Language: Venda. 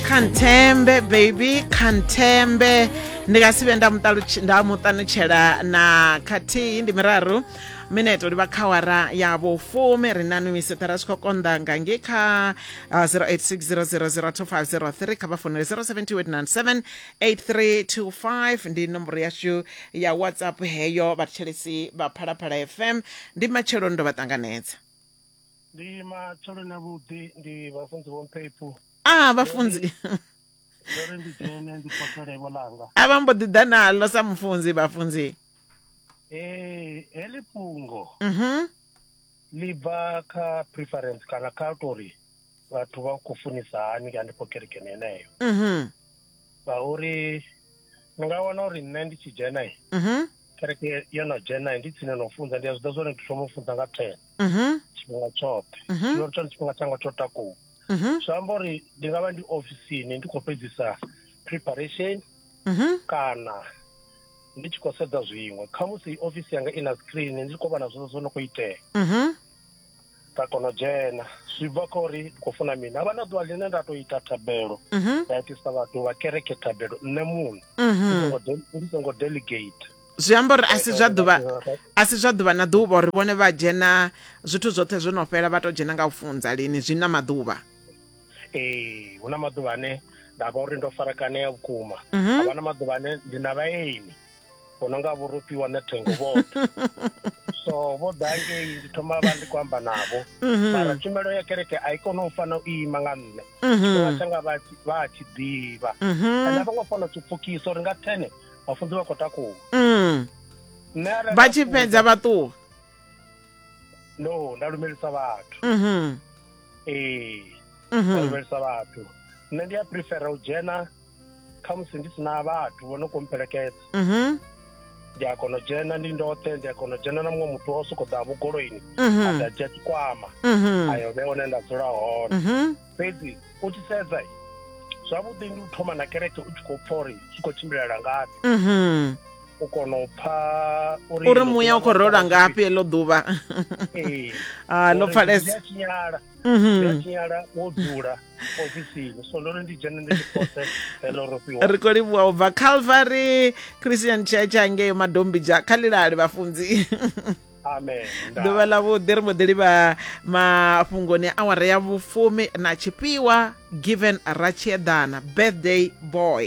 khanthembe baby khanthembe ndi nga si vhe nda mu ṱalutsh- nda mu ṱanutshela na khathihi ndi miraru mineto livha kha wara ya vhufumi ri na numiseta ra tshi khou konḓa nga nge kha uh, 0860002503 kha vha founele 0728978325 ndi nomboro yashu ya whatsapp heyo vhathetshelesi vha phalaphala fm ndi matshelo ndo vha ṱanganedza Ndi matsheloni avhuḓi ndi vhafunzi vho mphepu. Ah vhafunzi. Ndo ri ndi dzhene ndi potole vho langa. A vha mbo ḓi ḓa naḽo sa mufunzi vhafunzi. Eh heḽi fhungo. Mhm. Ḽi bva kha preference kana kha tori. vhathu vha khou funisa hani hanefho kerekeni heneyo mhm ngauri ni nga wana uri nṋe ndi tshi dzhena i mhm kereke yo no dzhena i ndi tsini no funza ndi a zwi ḓa zwone ndi thoma u funza nga ten mhm tshifhinga tshoṱhe Mhm. zwino ri tshone tshifhinga tshanga tsho takuwa mhm zwi amba uri ndi nga vha ndi ofisini ndi khou fhedzisa preparation mhm kana ndi tshi khou sedza zwiṅwe khamusi ofisi yanga i na screen ndi tshi khou vhona zwezwo zwo no khou itea mhm nda kona u dzhena zwi bva kha uri khou funa mini havha na ḓuvha ḽine nda to ita thabelo mhm. nda itisa vhathu vha kereke thabelo nṋe muṋe mhm. ndi songo delegate zwi amba uri asi zwa ḓuvha asi zwa ḓuvha na ḓuvha uri vhone vha dzhena zwithu zwoṱhe zwo no fhela vha to dzhena nga u funza lini zwi na maḓuvha ee hu na maḓuvha ane nda vha uri ndo farakanea vhukuma mhm. havha na maḓuvha ane ndi na vhaeni hu no nga vhurufhiwa na thengo vhoṱhe so vho ḓa ngei ndi thoma vha ndi khou amba navho mhm. mara tshumelo ya kereke a i kone u fana u ima nga nṋe mhm. tshifhinga tshanga vha a tshi ḓivha mhm. ane a vho ngo fana u tshi pfukisa uri nga thene vhafunzi vha khou takuwa mm. vha tshi fhedza vha ṱuwa no nda lumelisa vhathu ee nda lumelisa vhathu nṋe ndi a prefera u dzhena khamusi ndi si na vhathu vho no kho mpelekedza mhm ndi a kona u dzhena ndi ndoṱhe ndi a kona u dzhena na muṅwe muthu o sokou ḓa vhugoloini a mhm ḓa dzhia tshikwama mhm ayo vhe hone nda dzula hone mhm fhedzi u tshi sedza i, zwavhuḓi ndi u thoma na kereke u tshi khou pfa uri zwi khou tshimbilela ngafhi mhm u kona u pfa uri uri muya u khou rola ngafhi eḽo ḓuvha Ah, ḽo pfalesa. tshinyala Mhm. ya tshinyala wo dzula ofisini so ndo ri ndi dzhene ndi tshipotse heḽo ro fhiwa ri khou livhuwa u bva calvary christian church angeyo madombija kha lilali vhafunzi amen nda. ḓuvha ḽa vhuḓi ri mbo ḓi livha mafhungoni a awara ya vhufumi na tshifhiwa given ratshieḓana birthday boy